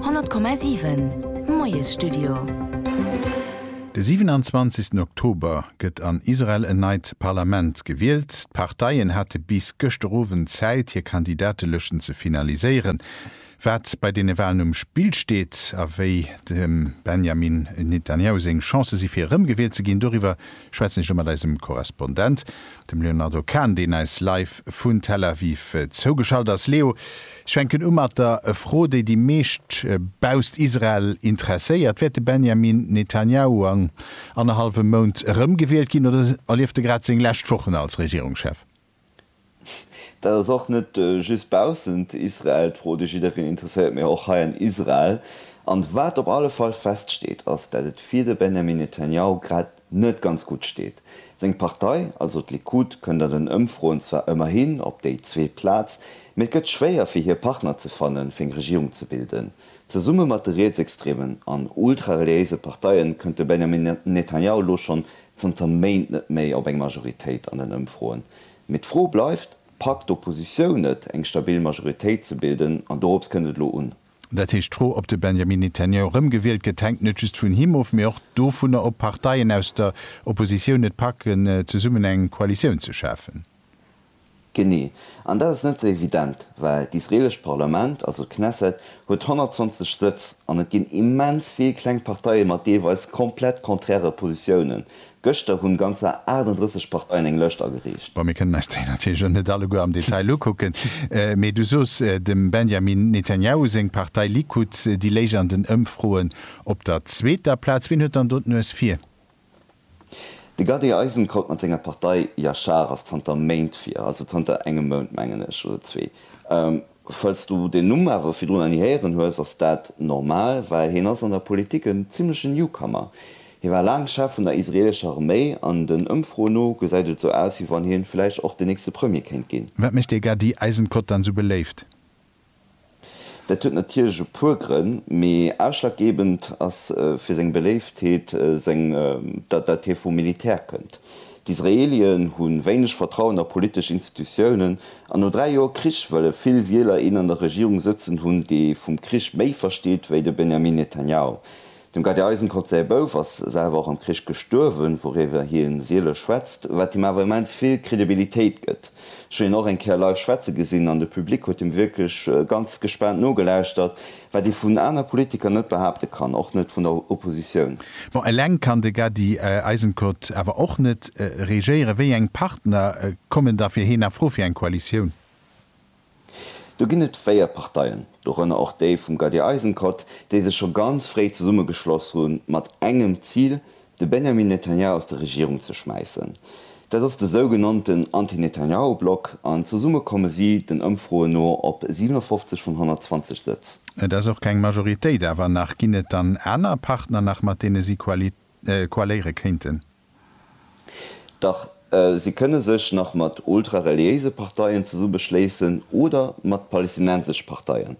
100,7 Moiesstudio. De 27 Oktober gëtt an Israel en neit Parlament gewielt. D'Parteien hate bis gëschter Owend Zäit, hir Kandidatelëschten ze finaliséieren. Wat bei deene Walen um Spill steet a wéi dem Benjamin Netanjahu seng Chancë si fir erëmgewielt ze ginn, doriwwer schwätzen ech elo mat eisem Korrespondent. Dem Leonardo Kahn, deen eis live vun Tel Aviv zougeschalt ass. Leo, ech fänken u mat der Fro, déi déi meescht bausst Israel interesséiert. Wäert de Benjamin Netanjahu an annerhallwem Mount erëmgewielt ginn oder erlieft e grad seng lescht Wochen als Regierungschef? Dat ass och net just baussent Israel d'Fro, déi jiddereen interesséiert, mee och hei an Israel. An wat op alle Fall feststeet, ass, dat et fir de Benjamin Netanjahu grad net ganz gutt steet. Seng Partei, also d'Likud, kënnt an den Ëmfroen zwar ëmmerhin op déi zweet Plaz, mee et gëtt schwéier fir hir Partner ze fannen, fir eng Regierung ze bilden. Zesumme mat de rietsextremen an ultrareliéise Parteien kënnt de Benjamin Netanjahu elo schonn zanter Méint net méi op eng Majoritéit an den Ëmfroen. Mee d'Fro bleift, Packt d'Oppositioun et, eng stabil Majoritéit ze bilden? An dorops kënnt et elo un. Dat heescht, d'Fro, ob de Benjamin Netanyahu erëmgewielt gëtt, hänkt net just vun him of, mee och dovunner, ob Parteien aus der Oppositioun et packen, zesummen eng Koalitioun ze schafen. Genee. An dat ass net esou evident, well d'israeelescht Parlament, also d'Knesset, huet 120 Sëtz an et ginn immens vill kleng Parteie mat deelweis komplett konträre Positiounen. Gëschter hunn ganzer 38 Parteien eng Lëscht agereecht. Bon, mir kënnen eis déi natierlech elo net alleguer am Detail ukucken, mee du soos, dem Benjamin Netanjahu seng Partei Likud, déi léich an den Ëmfroen op der zweeter Plaz. Wien huet dann do d'Nues vir? De Gadi Eisenkot mat senger Partei Yashar ass zanter Méint vir, also zanter engem Mount, mengen ech, oder zwee. Falls du den Numm awer virdrun nach ni héieren hues, ass dat normal, well hien ass an der Politik en zimmlechen Newcomer. Hie war laang Chef vun der israeelescher Arméi an den Ëmfroen no gesäit et esou aus, wéi wann hien vläicht och den nächste Premier kéint ginn. Wat mécht dir gar déi Eisenkotte dann sou beléift? Dat huet natierlech e puer Grënn, mee ausschlaggebend ass fir seng Beléiftheet seng, dat hie vum Militär kënnt. D'Israelien hu wéineg Vertrauen a politesch Institutiounen an no dräi Joer Krich wëlle vill Wieler een an der Regierung sëtzen hunn, dee vum Krich méi versteet wéi de Benjamin Netanyahu. Dem Gadi Eisenkot säi Bouf ass selwer och am Krich gestuerwen, wouriwwer hie siele schwätzt, wat him awer immens vill Kredibilitéit gëtt. Ech hunn hien och eng Kéier live schwätze gesinn an de Public huet him wierklech ganz gespaant nogelauschtert. Wat ee vun aner Politiker net behaapte kann, och net vun der Oppositioun. Bon, eleng kann de Gadi Eisenkot awer och net regéieren. Wéi eng Partner kommen da fir hien a Fro fir eng Koalitioun? Do ginn et véier Parteien, dorënner och déi vum Gadi Eisenkot, déi sech scho ganz fréi zesummegeschloss hu mat engem Zil, de Benjamin Netanyahu aus der Regierung ze schmäissen. Dat ass de sougenannten Anti-Netanyahu-Block an zesumme komme si den Ëmfroen no op 57 vun 120 Sëtz. Et ass och keng Majoritéit, awer nach ginn et dann aner Partner nach, mat deene si koaléiere kéinten? Dach, si kënne sech nach mat ultra-reliéise Parteien zesummeschléissen oder mat palästinensesch Parteien.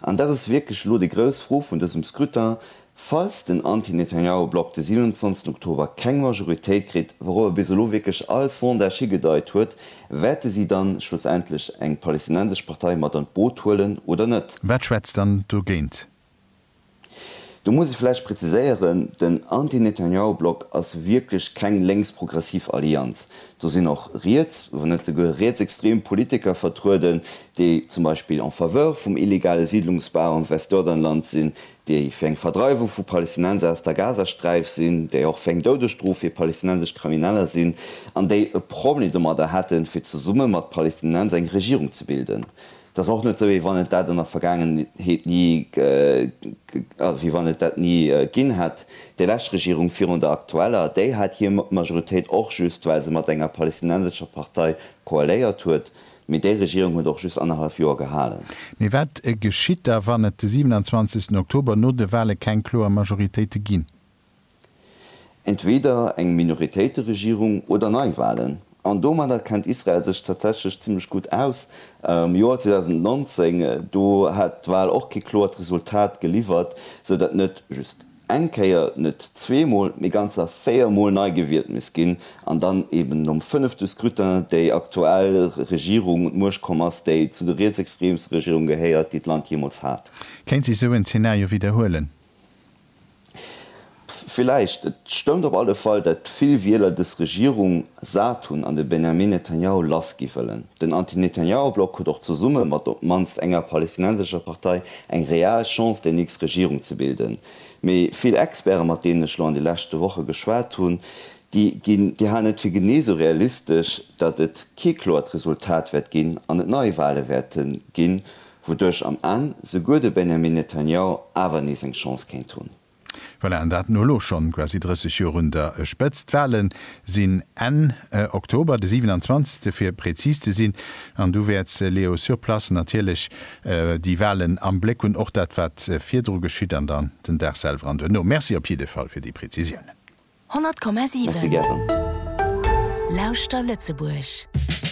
An dat ass wierklech elo déi grouss Fro vun dësem Scrutin, Falls den Anti-Netanyahu-Block de 27 Oktober keng Majoritéit kritt, wourobber bis elo wierklech all Sondage higedeit huet, wäerte si dann schlussendlech eng palästinensesch Partei mat an d'Boot huelen oder net? Wat schwätzt dann dogéint? Do muss ech vläicht präziséieren, den Anti-Netanyahu-Block ass wierklech keng lénks-progressiv Allianz. Do sinn och riets, wann net souguer rietsextrem Politiker vertrueden, déi zum Beispill en faveur vum illegale Siedlungsbau am Westjordanland sinn, déi fir eng Verdreiwung vu Palästinenser aus der Gazasträif sinn, déi och fir eng Doudesstrof fir palästinensesch Krimineller sinn an déi e Problem domadder hätten, fir zesumme mat Palästinenser eng Regierung ze bilden. Et ass och net esou, wéi wann et dat an der Vergaangenheet ni, also wéi wann et dat ni ginn hätt. Déi lescht Regierung virun der aktueller, déi hat hir Majoritéit och just, well se mat enger palästinensescher Partei koaléiert huet. Mee déi Regierung huet och just annerhallef Joer gehalen. Mee wat geschitt da wann et de 27 Oktober no de Wale keng kloer Majoritéite ginn? Entweeder eng Minoritéiteregierung oder Neiwalen. An domadder kennt Israel sech tatsächlech zimmlech gutt aus. Am Joer 2019, do hat d'Wal och kee kloert Resultat geliwwert, sou datt net just eng Kéier, net zweemol, mee ganzer véiermol nei gewielt misst ginn, an dann eben nom fënnefte Scrutin déi aktuell Regierung un d'Muecht komm ass, déi zu de rietsextreemste Regierunge gehéiert, déi d'Land jeemools hat. Kéint sech esou en Zenario widderhuelen? Villäicht. Et stëmmt op alle Fall, datt vill Wieler dës Regierung sat hunn an de Benjamin Netanjahu lass gi wëllen. Den Anti-Netanjahu-Block huet och zesumme mat op d'mannst enger palestinensescher Partei Eng real Chance déi nächst Regierung ze bilden. Mee vill Experte mat deenen ech lo an de leschte Woche geschwat hunn, déi ginn, déi halen et fir genee sou realistesch, datt et kee kloert Resultat wäert ginn an et Neiwahle wäerte ginn, wouduerch am Enn souguer de Benjamin Netanyahu awer nees eng Chance kéint hunn. Voilà, an dat no elo schonn quasi 30 Joer un der Spëtzt. D'Wahle sinn Enn Oktober, de 27. fir präzis ze sinn. An du wäerts, Leo, sur place natierlech déi Wahlen am Bléck hunn, och dat wat virdru geschitt an dann den Dag selwer an duerno. Merci op jidde Fall fir déi Präzisiounen. Merci gären. 100,7 Lauschter Lëtzebuerg!